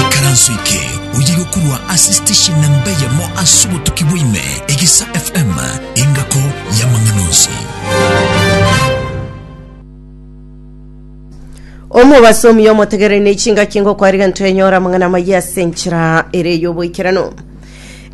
Ikaranso eke oye gokorwa ase station namba eyemo ase obotuki bwaime egisa FM engako y'amang'ana onsi. omobasomi omotegereri ne chingaki ngokwariga ntoenyora amang'ana amayia ase enchera ere y'oboikeranu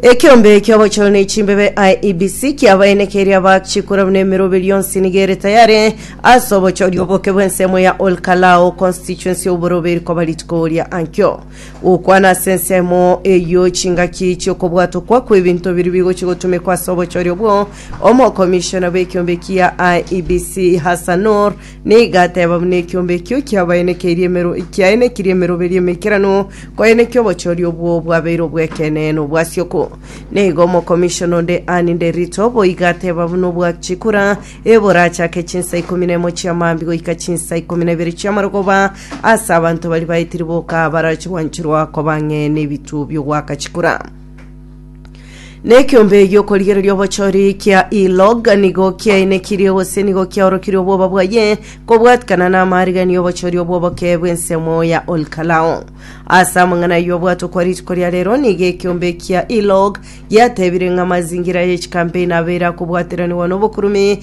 Ekeombe ki'obochore ne chimbebe IEBC kiabaene keria bakchikora buna emerobe rionsi nigere tayare ase obochoria oboke bw'ensemo ya Olkalao constituency y'oborobe rikoba rituko ria ankio gokwana ase ensemo eyio chingaki chi'okobwatokwa kw'ebinto biri bigochi gotumekwa ase obochori obwo omokomishona bw'ekiombe kia IEBC Hassanur Nigo ateba buna ekiombe ekio kiabaenekeirie emero- kiaenekiri emeroberio emeikeranu, koeneki obochori obwo bwabeire obw'ekeene nobwa Sioko. Na igo omokomishona onde Anne Nderito boigo ateba buna obwa chikura, eborache ake chinsa ikomi na emo chia maambi goika chinsa ikomi na ibere chia marogoba ase abanto baria baetiri boka barachigwanchirwa koba ng'e nebituo bi'ogwaka chikura. Nekiombe gi'okorigereria obochori kia E-log nigo kiainekirie gose nigo kiaorokirie obwoba bwaye kobwatikana n'amarigererio obochori obw'oboke bw'ensemo ya Olkalao. Ase amang'ana ayio obwatwa kwa rituko ria rero nigo ekiombe kia E-log giatebire ng'a amazingira ye chikampeni abeire akobwateranigwa n'obokurumi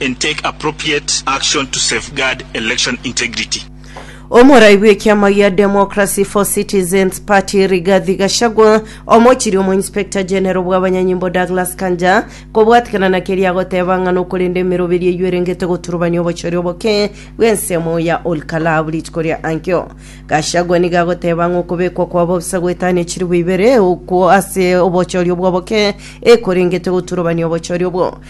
and take appropriate action to safeguard election integrity. Omorai bw'ekiama gia Democracy for Citizens Party Rigathi Gachagua, omochiria omo Inspector General bw'abanyanyimbo Douglas Kanja kobwatikana na keria agoteba ng'a nokorenda emeroberi eyio erengete goturubania obochori oboke bw'ensemo ya Olkalau rituko ria ankio. Gachagua nigo agoteba ng'a okobekwa kwa bosa gwetano echiribu ibere okwo ase obochori obwo oboke ekorengete goturubania obochori obwo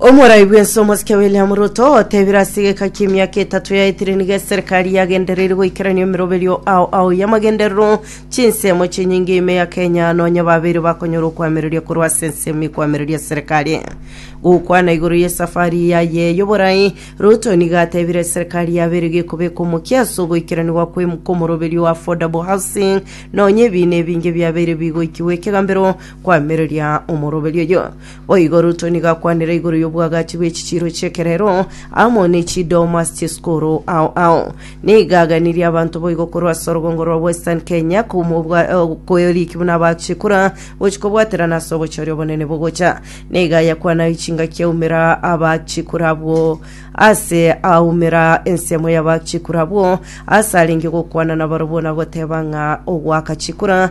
Omorai bwense omosike William Ruto otebire ase egeka ki'emiaka etato yaetire nigo eserikari yagendereire goikerania emeroberio ao ao y'amagenderero chinsemo chinyinge ime ya Kenya nonya babeire bakonyora okwamereria korwa ase ensemo ekwamereria serikari. Gokwana igoro y'esafari yaye y'oborai, Ruto nigo atebire eserikari yabeire gekobeka omokia ase ogoikeranigwa kw'em- kw'omoroberio wa affordable housing nonya ebiina ebinge biabeire bigoikigwa ekegambero kwamereria omoroberio oyo. Boigo Ruto nigo akwanire igoro y'obwagachi bw'echichiiro chi'ekerero amo ne chidomas chi'esukuru ao ao. Nigo aganirie abanto boigo korwa ase orogongo rwa Western Kenya kouma obwa- eh, kweriki buna abachie kura gochia kobwaterana ase obochori obonene bogocha. Nigo ayakwanae chingaki aumera abachie kura abwo ase aumera ensemo y'abachie kura abwo ase arenge gokwana nabarabwo na goteba ng'a ogoaka chikura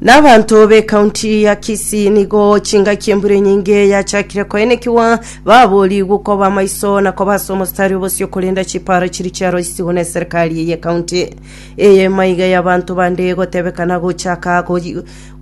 Nabanto be county ya Kisii nigo chingaki embura enyinge yachakire koenekiwa babori gukoba maiso na kobasa omostari obosio korenda chiparo chiri chiaro isigwa na serikali eye county eye maiga ya banto bande gotebekana gochaka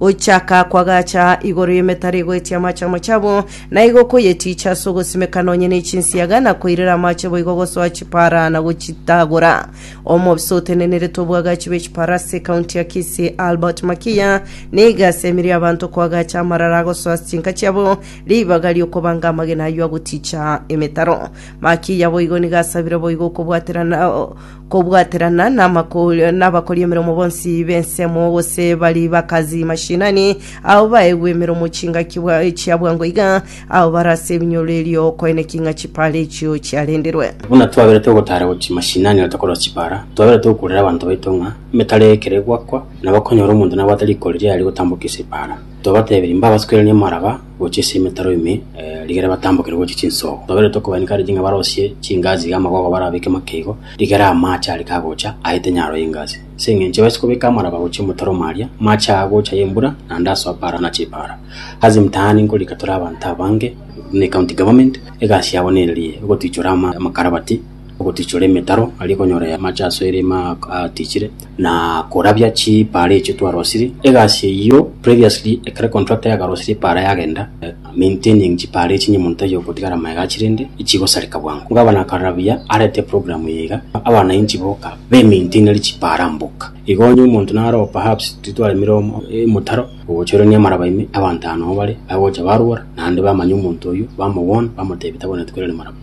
gochaka kwagacha igoro y'emetaro egoetia amache amo chabo na igo koyeticha ase ogosimeka nonye ne chinsiaga na koirera amache boigo gosoa chipara na gochitagora Omobisa otenenerete obwagachi bw'echiparasi ekaunti ya Kisii Albert Makiya niga asemire abanto koagacha amarara agosoa ase chinka chiabo ribaga ri'okobanga amagena ayio agoticha emetaro. Makiya boigo niga asabire boigo okobwaterana kobwaterana n'amako- n'abakori emeremo bonsi b'ensemo gose bari bakazi mashinani, ao baegwe emeremo chingaki bwa- chia bwango iga Abo barase ebinyoro erio koeneki ng'a chipaara echio chiarenderwe. Buna twaberete ogotaara gochia mashinani reta korora chipaara, twaberete okourera abanto baito ng'a emetara ekero egwakwa, nabo ekonyora omonto nabwate riko riria riaria gotambokia ase epaara. Twabatebirie mbabasukeranie amaraba gochia ase emetaro ime, rigere batambokere gochia chinsoogo. Twaberete okobainekaneti ng'a barosie chingaasi iga amagogo barabeke make igo, rigere amaache are kagocha aete nyaro y'engaasi. Ase engencho baise kobeka amaraba gochia omotaro omo aria, amaache aa agocha ay'embura, naende asoa paara na chipaara. Ase emitaani nkorika tore abanto abange buna ecounty government, egasi yabo nererie ogotichora amakarabati, ogotichora emetaro aria okonyora amache asoire ime atichire, na korabia chipaara echio twarosiri. Egasi eyio previously ekero contractor yakarosire epaara yagenda, maintaining chipaara echio nyemonto tari okotigara magega achire rende chigosareka bwango. Gavana akarabia arete eprogramu eye iga abananchi boka bemaintainerie chipaara mboka. Igo onye omonto naroba perhaps titwaremire omotaro, Ogochorerania amaraba ime, abanto aa nomo bare, bagocha barwora, naende bamanya omonto oyio, bamogwon, bamotebi tabwenerete twerere maraba.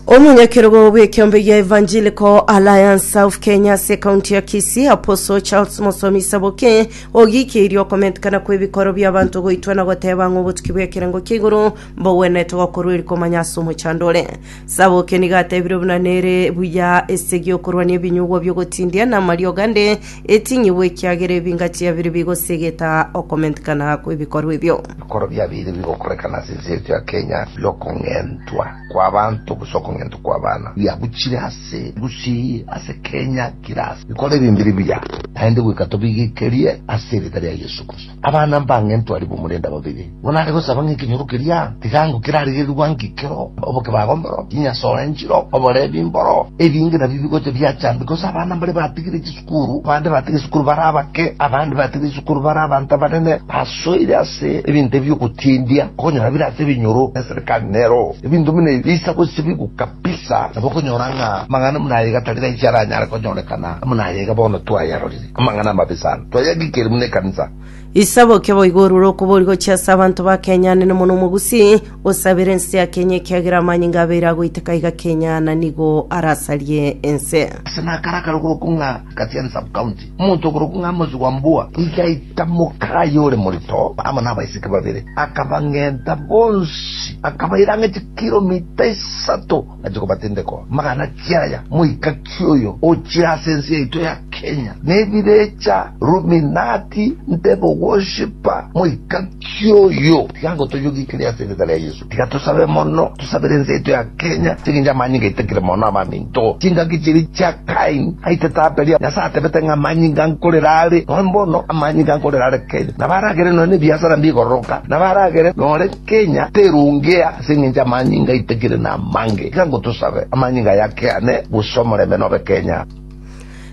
Omonyakerogo bw'ekeombe gia Evangelical Alliance South Kenya ase ekaunti ya Kisii, Apostle Charles Mosomi Saboke, ogiikeirie okomentekana kw'ebikoro bi'abanto goitwa na goteba ng'a obotuki bw'ekerengo kia igoro mbogwenerete gokorwa eri komanya ase omochandore. Sabokia nigo atebire buna nere buya ase gi'okorwania ebinyugwa bi'ogotindia na amariogo ande eting'igwa ekiagera ebinga chiabire bigosegeta okomentikana kw'ebikorwa ebio. Bikoro biabire bigokorekana ase ense yaito ya Kenya bi'okong'entwa kw'abanto gose okong'entwa kw'abana biabuchire ase engusii eye ase Kenya kera ase bikoro ebi mbiri buya naende goika tobigekerie ase erieta ria Yesu Kristo. Abana mbange ntwari b'omorende babere, igo nare gosaba ng'a ekenyoro keria kigango kerarigerie gwanka ekero obokebago mboro, chinyasoe nchiro, oborebi mboro, ebinge nabio bigocha biachambi, gose abana mbare batigire chisukuru, abande batige chisukuru bare abake, abande batige chisukuru bare abanto abanene, basoire ase ebinto ebi bi'ogotiendia, okonyora bire ase ebinyoro y'eserekari nero ebinto buna ebi bisa gosibigwa kabisa, nabo okonyora ng'a amang'ana buna aya iga tari raiche aranyare konyorekana buna aya iga bono twayarorire. Amang'ana amabe sana twayagikire buna ekanisa. Isabokia boigo orure okobori gochia ase abanto ba Kenya ande nomono omogusii osabere ense ya Kenya ekiagera amanyinga abeire agoiteka iga Kenya na nigo arasarie ense. Ase nakaraka rogoroko ng'a Kasiani Sub-County, omonto ogoroko ng'a Amos Wambua igaita mokaye ore morito amo nabaiseke babere, akabang'enta bonsi akabaira ang'e chikiromita isato. Nache kobatindekwa magana ki aya moikakia oyo ochire ase ense yaito ya Kenya nebirecha ruminati ntebe ogoshipa moikakia oyo tiga ngotoyogikiri ase erieta ria Yesu tiga tosabe mono tosabere ense yaito ya Kenya ase engencho amanyinga aitakire mono abaminto chingaki chiria chia Kain aitete Abeli Nyasaye atebete ng'a amanyinga nkorera are noe mbono amanyinga nkorera are Kenya nabo aragere noe nebiasara mbigororoka nabo aragere nore Kenya terongea ase engencho amanyinga aito ekere namange. Iga ngotosabe, amanyinga aya akeane, gose omorembe nobe Kenya.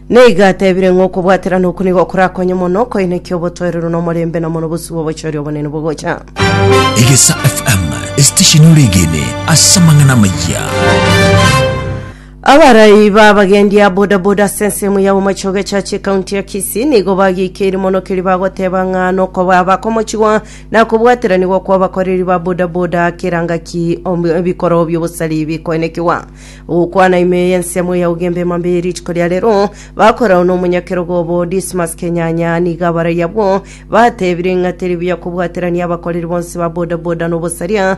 Neiga atebire ng'a okobwaterana oku nigo korakonye mono koinekia obotoereru na omorembe na mono bosio bw'obochori obonene bogocha. Egesa FM, esitesheni ore egene ase amang'ana amayia. Abarai b'abagendi a bodaboda ase ensemo ya Bomachoge Echache ekaunti ya Kisii nigo bagiikeiri mono keria bagoteba ng'a nokoba bakomochigwa na kobwateranigwa kw'abakoreri ba bodaboda kera ngaki om- ebikoro bi'obosari bikoenekigwa. Ogokwana ime eye ensemo ya Ugembe Mambei rituko ria rero bakorao n'omonyakerogo obo Dismas Kenyanya nigo abarai abwo batebire ng'a teri buya kobwaterania abakoreri bonsi ba bodaboda n'obosaria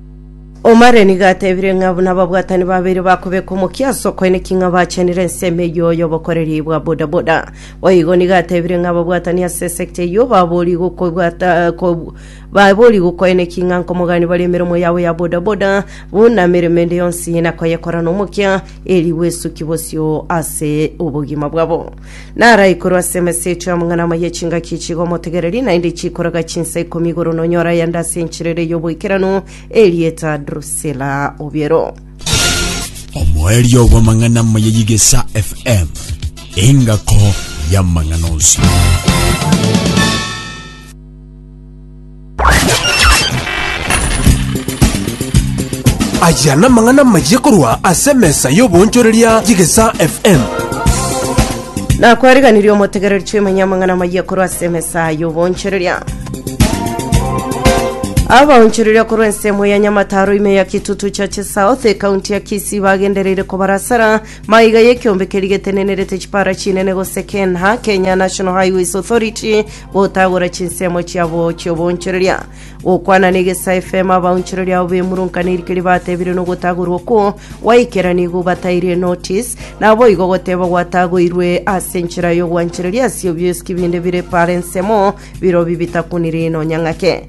Omare nigo atebire ng'a buna ababwatani babere bakobeka omokia ase okoeneki ng'a bachenire ensemo eyio y'obokoreri bwa bodaboda. Boigo nigo atebire ng'a ababwatani ase esekta eyio baborie gokobwata ko- baborie gokoeneki ng'a nkomogani bare emeremo yabo ya bodaboda buna emeremo ende yonsi na koyekora nomokia, eri bwesuki bosio ase obogima bwabo. Naraikorwe ase emeseti y'omong'ina omo y'echingaki chigo omotegereri, naende chikoraga chinsa ikomi igoro nonyore ayande ase enchera ere y'oboikeranu, erieta Drusila obiero. omoerio bw'amang'ana omo ya Yigesa FM, engako y'amang'ana onsi. Aya namang'ana amayia korwa ase emesa y'oboonchoreria y'Egesaa FM. nakwariganirie omotegereri chimanye amang'ana amayia korwa ase emesa y'oboonchoreria abaonchoreria korwa ensemo ya nyamataro ime ya kitutu chache south ekaunti ya kisii bagendereire kobarasara maiga y'ekiombe keri getenenerete chipara chinene gose kenha kenya national highways authority Gotagora chinsemo chiabo chi'obonchoreria, gokwana negesa efemo abaonchoreria abo b'emurunka nerikeri batebire nogotagorwa okwo gwaikera nigo bataire notice, naboigo goteba gwatagoirwe ase enchera y'ogwanchereria ase obiosiki binde bire paro ensemo birobio bitakunire nonyang'ake.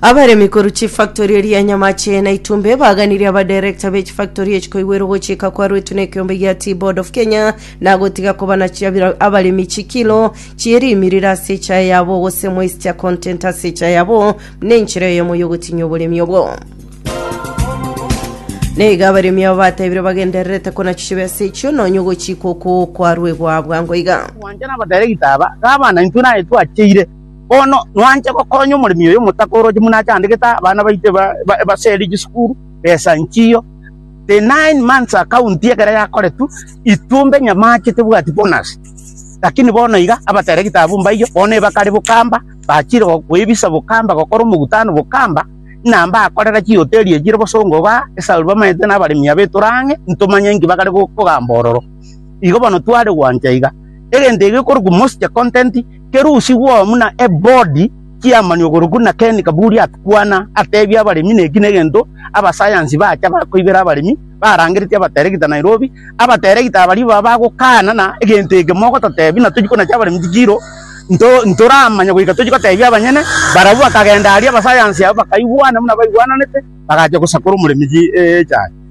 abaremi korwa chifactori eria nyamache na itumbe baganirie abadirekta be chifactori echi koigwera ogochika kwarwetwe na ekeombe gia Tea Board of Kenya na gotiga kobana chiabira abaremi chikilo chierimiriria ase echae yabo gose moisture content ase echae yabo nenchera eyemo yogotinyia oboremi obwo neiga abaremi abo batebire bagendererete konachibe ase echio nonya ogochika okwo kwarwegwa bwango iga Mwanchani abadirekita aba, gavana, intwe naye twacheire. Bono nwanche gokonya omoremi oyo omotaka oroche buna achandegete abana baito ebaserie chisukuru, besa nchiyo. The nine months account ekero yakoretwe, intwe mbe nyamache tebwati bonus. Lakini bono iga, abatera egetabu mbaiyo, bono ebakare bokamba, bachire gokoebisa bokamba, gokora omogutano bokamba, buna mbakorera chihoteli echi chire bosongo igaa, esababu bamaete na abaremi aba etore ang'e, ntomanye inki bakare gokogamba ororo. Igo bono tware gwancha iga. Egento eke ekorokwa most content. Kerusi bw'omu na ebodi chi'amani ogorokwu na Ken Kaburi akwana atebia abaremi neki negento abasayansi bacha bakoibera abaremi barangeretie abateregita Nairobi, abateregita abaria baba bagokana na egento eke mogototebi na tochia konacha abaremi chikiro nto ntoramanya goika tochia gotebia abanyene barabwo bakagenda aria abasayansi aba bakaigwana buna baigwananete bagacha gosakora omoremi chi eeh echaye.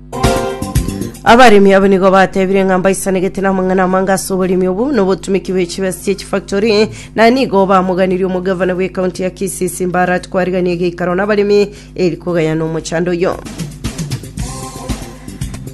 abaremi abo nigo batebire ng'a mbaisanegete namang'ana amange ase oboremi obo na obotumiki bwe chibesa chie chifactori na nigo bamoganirie omogavana bwe kaunti ya kisii simbarat kwarigania egeikaro n'abaremi eri kogayana omochando oyo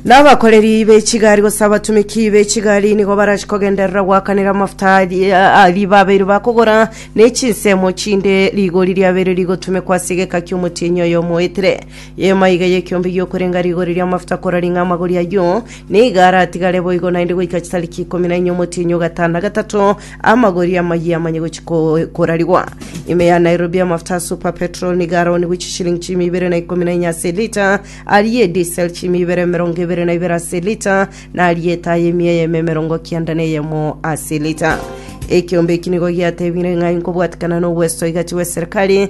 n'abakoreri be chigari gose abatumiki be chigari nigo barachi kogenderera goakanera amafuta ari- aria babeire bakogora ne chinsemo chinde rigori riabeire rigotumekwa ase egeka ki'omotienyi oyomo oetire Y'eema iga y'ekiombe gi'okorenga rigori ri'amafuta korora ng'a amagori ayio nigo aratigare boigo naende goika chitariki ikomi na enye omotienyi o gatano na gatato amagori amayia amanye gochia ko- korarigwa. Ime ya Nairobi y'amafuta a Super Petrol nigo araonigwe chishilingi chiimi ibere na ikomi na enye ase elita, aria edisel chiimi ibere emerongo ebere na ibere ase elita, na aria etaa y'emi eyemo emerongo kianda na eyemo ase elita. Ekiombe eki nigo giatebire ng'a inkobwatikana nobwesoigachi bw'eserikari